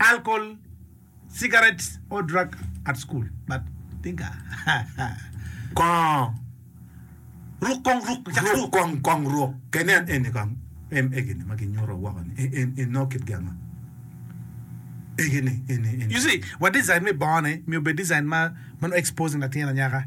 alkol, cigarettes or drug at school but think Kong ruk kong ruk cak ruk. Ruk kong kong ruk. Kenen eni kong em egini ma ginyuto woko ni en en nongo kit gin ma egini eni eni. You see, wa design me bongone myero obed design ma ma nongo exposing latin anyaka.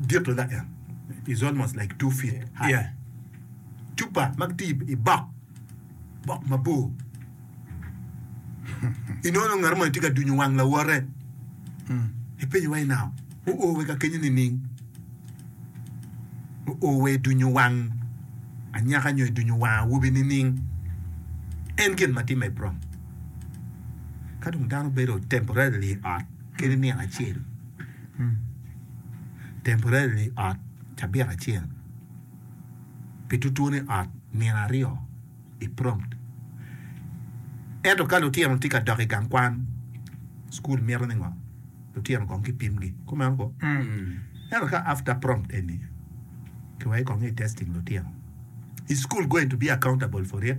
dit adada en is almost like two feet high yeah. cupa ma gitye i bok bok mabor inono ngat mo tye ka dunyo wang lawote mm. ipenyo wa inao oowe ka kenyo nining oowe idunyo wang anyaka nyo idunyo wang awobi nining en gin ma timme prom ka dong dano bedo temporarily i ot kene nino acel Temporarily ot cabit acel, pi tutwone ot nino aryo i prompt. Ento ka lutino tye ka dok i gang kwan, cukul mito ni ngo? Lutino kong ki pimgi kumeno ko. Ento ka after prompt eni ki weko kong i testing lutino, is school going to be accountable for it?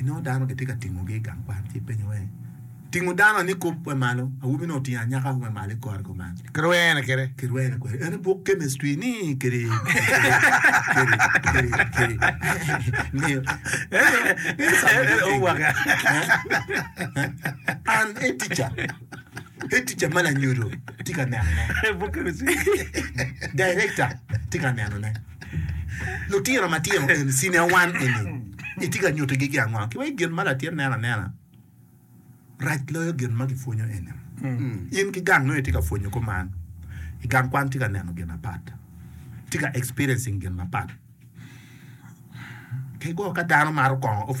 Inongo dano gitye ka tingogi i gang kwan ci ipenyo ni, 'Tingo dano ni kop me malo, awobi-ni otingo anyaka me malo i kore kuman. Kirwene kwede. Kirwene kwede. En buk kemistri ni kede. An e tica. E tica ma lanyodo tye ka nenone. Direkta tye ka nenone. Lutino matino eni, Senior One eni, itye ka nyuto gigi ango? Ki wai gin ma latin neno anena rac loyo gin ma gipwonyo eni. In ki gang nongo itye ka pwonyo kuman, i gang kwan tye ka neno gin apat, tye ka experiencing gin mapat. Kego ka dano maro kongo official.